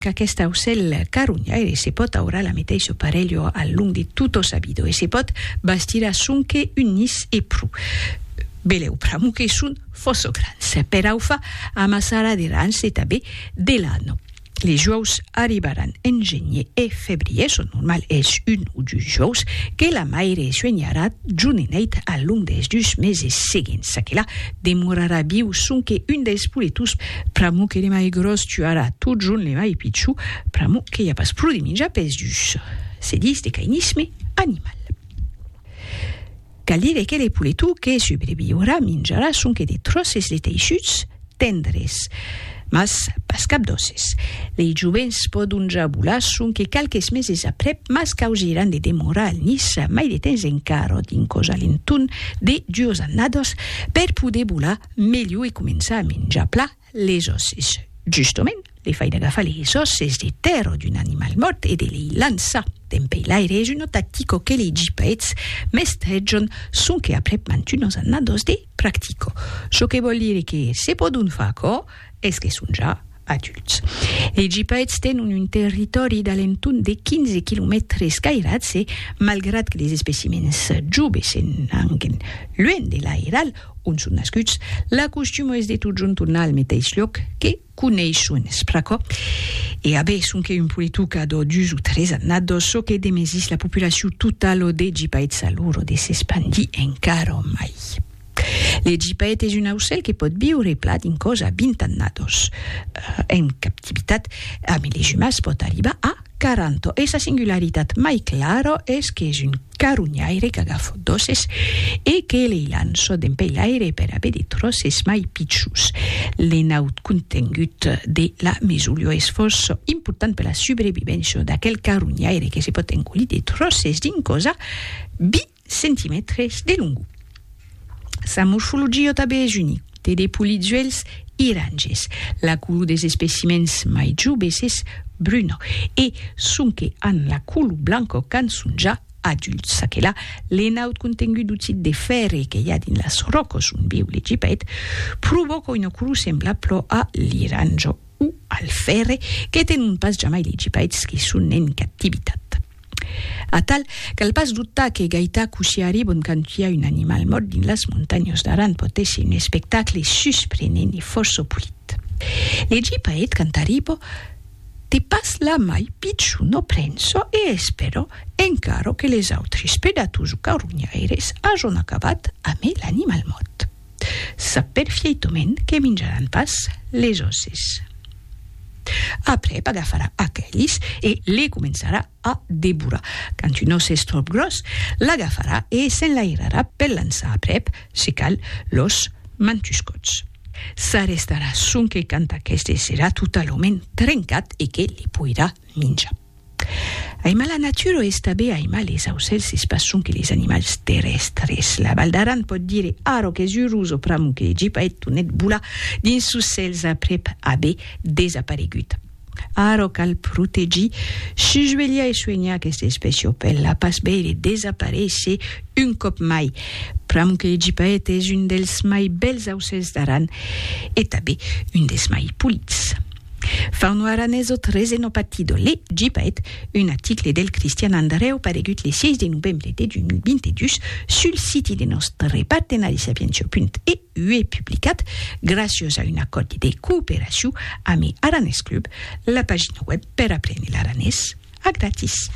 Qu'aquest aucèl caronhaire se pòt aurar la meteisho parelho al long de tot o sabido e se pòt bastir a sonque un nis e pro. Belèu pr'amo que son fòsso grans. Per aufa amassarà de rans e tabé de lano. Les juòus arribaràn en genie e febrier, son normal es un o dus juòus que la maire suenharà jonenèit al long des dus meses seguents. Aquela Demorarà viu sonque un deis poletos pr'amor que le mai gròs tuarà totjorn le mai pichon pr'amor que i a pas pro de minjar pes dus. Se dis de cainisme animal. Cal dire que le poleto que subreviurà minjarà sonque de tròces de teissuts tendres. Mas pas cap d'òsses. Lei jovents pòdon ja volar sonque qualques meses aprèp, mas causiràn de demorar al nis mai de temps encara, d'un còs a l'entorn de duas annadas, per poder volar melhor e començar a menjar plan les òsses. Justament, le fai d'agafar les òsses de tèrra d'un animal mòrt e de lei lançar dempei l'aire es una tactica que lei gipaets mestrejan sonque aprèp mantunas annadas de. Practico. Çò que vòl dire que se pòdon far aquò es que son ja adults. Lei gipaèths tenon un territòri d'alenton de 15 quilomètres cairats e, malgrat que les especimèns joves se n'anquen luènh de l'airal ont son nascuts, la costuma es de totjorn tornar al meteis luòc que coneishon es pr'aquò, e abe sonque un poletuc a d'ò dus o tres annados, çò que demesís la populacion totala o de Gipaèt s'a lor o de s'espandir encara o mai. Le Gipaèt es un aucèl que pòt viure plat dins còs a vint annados. En captivitat, ame les umans pòt arribar a. Caranto e sa singularitat mai clara es qu'es un carunhaire qu'agafo d'òsses e que lei lanço dempei l'aire per aver de tròces mai pichus. L'enaut contengut de la mesolio es fòrça important per la subrevivéncia d'aquel carunhaire que se pòt engolir de tròces dins cosa, bi. centimètres de longor. Sa morfologia tanben es unica, te de polizuèlhs iranges, la color des especimèns mai joves es bruna e sonque an la color blanca quand son ja adults. Aquela l'enaut contengut d'oxid de fèrre que i a dins las ròcas ont viu l'Egipèt provòca una color semblabla a l'iranja o al fèrre que tenon pas jamai l'Egipèt que son en captivitat. Atal, cal pas dubtar que Gaita Cusiari vònt cantiar un animal mòrt dins las montanhas d'Aran pòt èsser un espectacle susprenent e fòrça polit. Legi paet cantaribo te pas la mai pichon o prenço e espèro encara que les autres predators o carronhaires ajon acabat amé l'animal mòrt. Sap perfièitament que minjaràn pas les òsses. Aprèp agafarà aquelis e les començarà a devorar. Quand un ós es tròp gròs, l'agafarà e s'enlairarà per lançar aprèp, se cal, los mantuscots. S'arrestarà sonque quand aqueste serà totalament trencat e que les poirà minjar. Aimar la natura es tanben aimar les aucèls, es pas sonque les animals terrèstres. La Val d'Aran pòt dire arro qu'es urós o pr'amor que Egip a hèt tonet bolar dins sos cèls aprèp aver desaparegut. Arro cal protegir, susvelhar e soenhar aquesta espècia o pèl la pas veire desaparéisser un còp mai. Pr'amor que Egip a hèt es un dels mai bèls aucèls d'Aran e tanben un des mai polits. Far no aranesot resenopatido le Gipaet, un aticle del Cristian Andrèu paregut le 6 de novembre de 2022 sul siti de nòstre partenari sapientiau.eu publicat graciós a un acòrdi de cooperacion ame Aranès Club, la pagina web per aprene l'aranés a gratis.